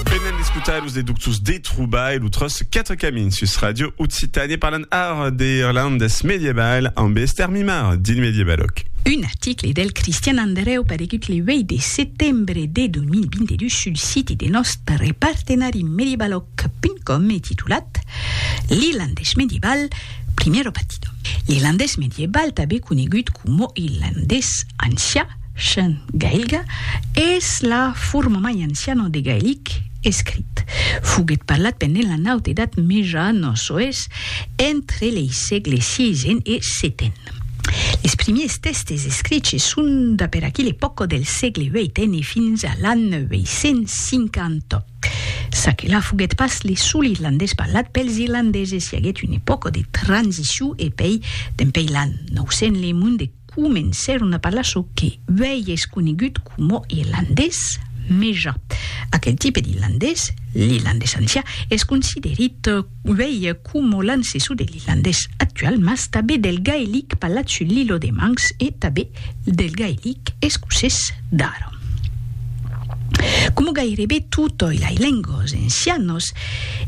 Venen d'escotar los deductos de trobar e lo tros 4 camins sus Radio Occitània parlant ara de irlandés medieval amb Esther Mimar dins Medievaloc. Un article del Cristian Andrèu paregut le 8 de setembre de 2022 sul siti de nòstre partenari medievaloc.com e titulat L'irlandés medieval, primero partido. L'irlandés medieval, tanben conegut coma irlandés ancià, Chen gailga es la forma mai anciana de gailic escrit. Foguèt parlat pendent la Naut Edat Meja no soes entre lei sègles siisen e seten. Les primiers tèxtes escriches son da per aquela epòca del sègle vèiten e fins a l'an 950. Ça que la foguèt pas le sol irlandés parlat pels irlandeses, i aguèt una epòca de transicion e pei, dempei l'an 900, le monde comencèron a parlar çò que uèi es conegut coma irlandés meja. Aquel tipe d'irlandés, l'irlandés ancià, es considerit uèi coma l'ancessor de l'irlandés actual mas tanben del gaelic parlat sul Lillo de Manx e tanben del gaelic escocés d'ara. Como gairebe tutoi lai lengos encianos,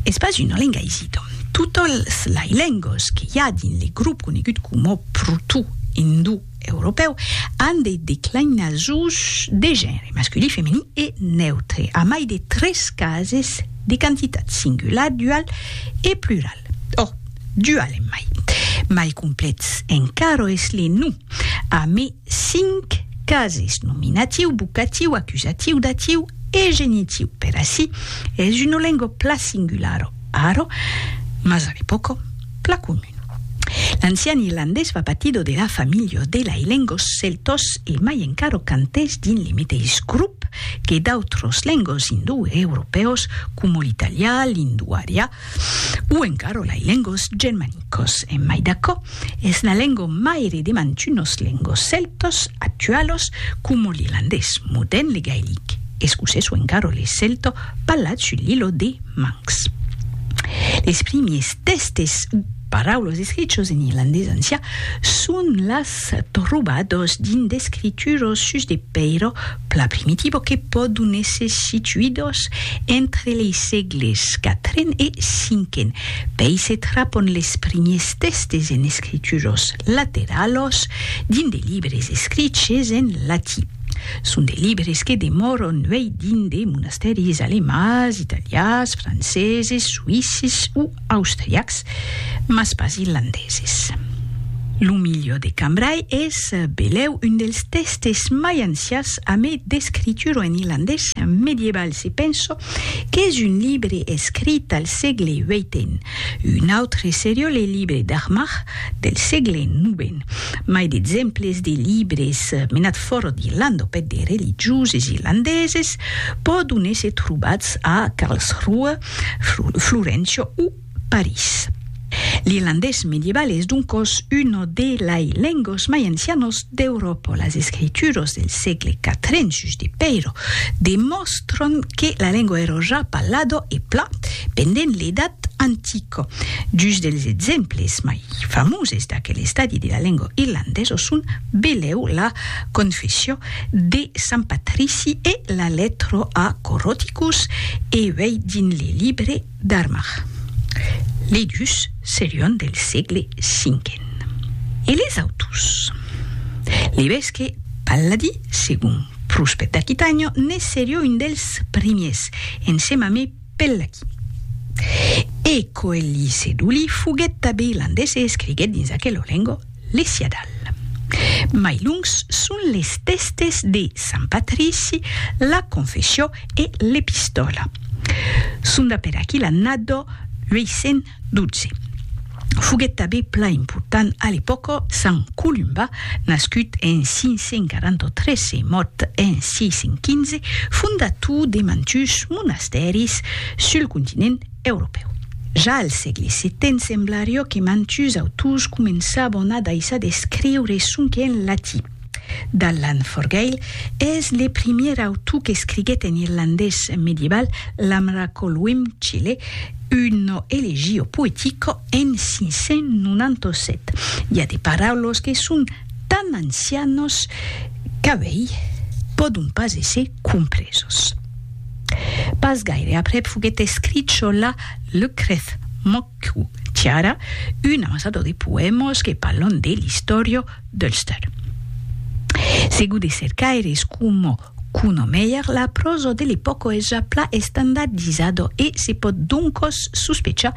es pas una lenga isito. Tutols lai lengos que i a dins le grop conegut como proto-indou-europeu an de declinasons de genre, masculin, feminin e neutre, a mai de tres cases de quantitat, singular, dual e plural. Ò, dual en mai. Mai complets encaro es le nom, a mai 5 cases, nominatiu, vocatiu, acusatiu, datiu e genitiu. Per ací es una lenga pla singularo, aro, mas a l'epòca pla comun. L'ancian irlandés va patido de la familha de lai lengos celtos e mai encara cantès dins li meteis grop que d'autros lengos indoeuropèus coma l'italià, l'indoarià, O encara lai lengos germanicos, en mai d'aquò, es la lengo maire de mantunos lengos celtos actualos coma l'irlandés modern, le gaelic, escocés o encara le celto parlat sul l'ilo de Manx. Les primiers tèstes o paraulos escrichos en irlandés ancià son las trobados dins d'escrituros sus de pèiro Pla primitivo que pòdon èsser situidos entre lei sègles quatren e cinquen, pei se trapon les primiers tèstes en escrituros lateralos dins de libres escriches en latí. Son de libres que demòron uei dins de monastèris alemands, italians, franceses, suïsses o austriacs, mas pas irlandeses. Lo milieu de Cambrai es belèu un dels tèstes mai ancians a mai d'escritura en irlandés medieval se penso qu'es un libre escrit al sègle vietn. Un autre serió le libre d'Armagh del sègle novèn. Mai d'exemples de libres menats fòra d'Irlanda au pèt de religioses irlandeses pòdon èsser trobats a Karlsruhe, Florencio o París. L'irlandés medieval es doncòs una de lai lenguas mai ancianas d'Euròpa. Las escrituras del sègle quatren sus de Peiro demòstran que la lengua èra ja parlada e pla pendent l'Edat Antica. Dus dels exemples mai famoses d'aquel estadi de la lengua irlandesa son Beleu la Confessio de Sant Patrici e la Letro a Coroticus e uei dins le libre d'Armagh. Lei dus serion del sègle cinquen. E les auturs? L'evesque Palladi, segon Pruspet d'Aquitànho, ne serió un dels primiers, ensemamb Pellaki. E Coeli Seduli foguèt tabé landés e escriguèt dins aquela lenga l'Esiadal. Mai lungs son les tèstes de Sant Patrici, la Confessió e l'Epistòla. Sonda per aqui l'annada 800. 12. Foguèt tanben plan important a l'epòca sant Columba, nascut en 543 e mòrt en 615, fondator de mantuns monastèris sul continent europèu. Ja al sègle setent semblarió que mantuns autors començavan a daissar d'escriure sonque en latin. D'Allan Forgaill es le primièr autor qu'escriguèt en irlandés medieval l'Amracolwym Chile, uno elegio poetico en 597. I a de paraulos que son tan ancianos qu'a uèi pòdon pas èsser compresos. Pas gaire aprèp foguèt escrich çò-là, Lucreth, Moc. Cu Tiara, un ansador de poèmas que parlan de l'istòria d'Ulster. Segur de cercaires coma Kuno Meyer, la pròsa de l'epòca es ja plan estandardizada e se pòt doncas sospechar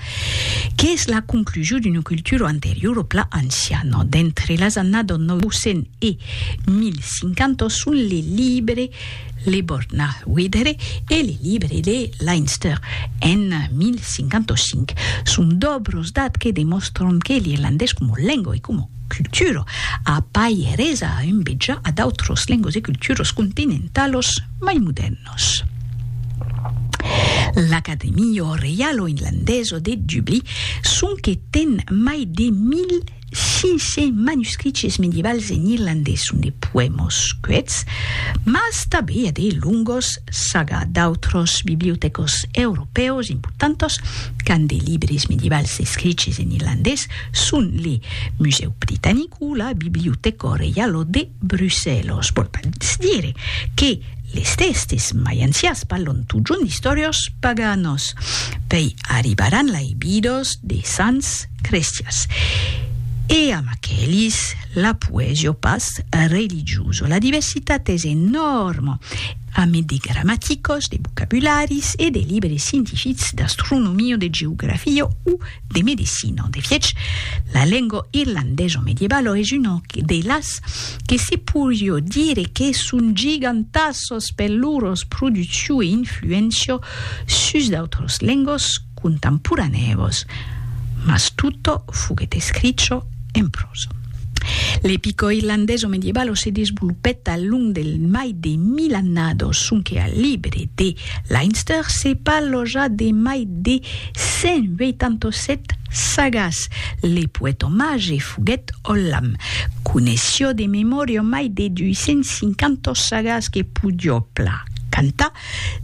qu'es la conclusion d'una cultura anteriora plan anciana. D'entre las annadas 900 e 1050 son les libres Le Bornal Wedere e le Libre de Leinster en 1055. Son dobros dat que demòstron que l'irlandés coma lengo e coma cultura a pas eresa a envejar a d'autros lengos e culturas continentalos mai modèrnos. L'Academia Reialo Irlandesa de Dublí sonque ten mai de 1000 Sise manuscriches medievals en irlandés son de poèmos cuèts, mas tanben i a de longos saga d'autros bibliotècos europèus importantos qu'an de libres medievals escriches en irlandés son le Musèu Britanic o la Bibliotèco Reialo de Brussèlos. Vòl pas dire que les tèxtes mai ancians parlon totjorn d'istòrios paganos. Pei arribar anlai vidos de sants, Crestias. E amb aquelis, l'apuèi jo pas religioso. La diversitat es enòrma, a mai de gramaticos, de vocabularis e de libres scientifics d'astronomia, de geografia o de medecina. De fiech, la lenga irlandesa medievalo es una de las que se porió dire que son gigantasas per lor produccion e influéncia sus d'autras lengas, contemporanèus, mas tutto foguèt escricho en prosa. L'epico irlandeso medievalo se desvolopèt al long del mai de mil annados, sonque al libre de Leinster se parlò ja de mai de 187 sagas. Le poèt omage foguèt Ollam, coneissió de memòria mai de 250 sagas que podió plan cantar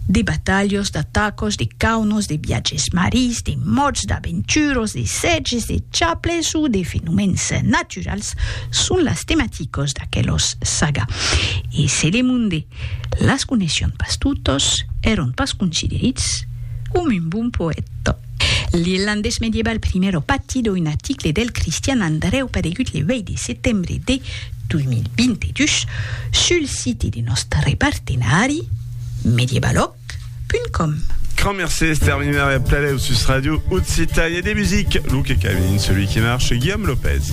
de batalhos, d'atacos, de caunos, de viatges marís, de mòrts, d'aventuros, de sètges, de chaples o de fenomèns naturals son las tematicos d'aquelos saga. E se le monde las coneisson pas totos, èron pas considerits coma un bon poèta. L'irlandés medieval Primero Patido, un article del Cristian Andrèu paregut le 8 de setembre de 2022 sul site de nòstre partenari medievaloc.com. Grand merci Esther Mimère et Plaleu sus Radio Occitanie des musiques, Luke Camille, celui qui marche, Guillaume Lopez.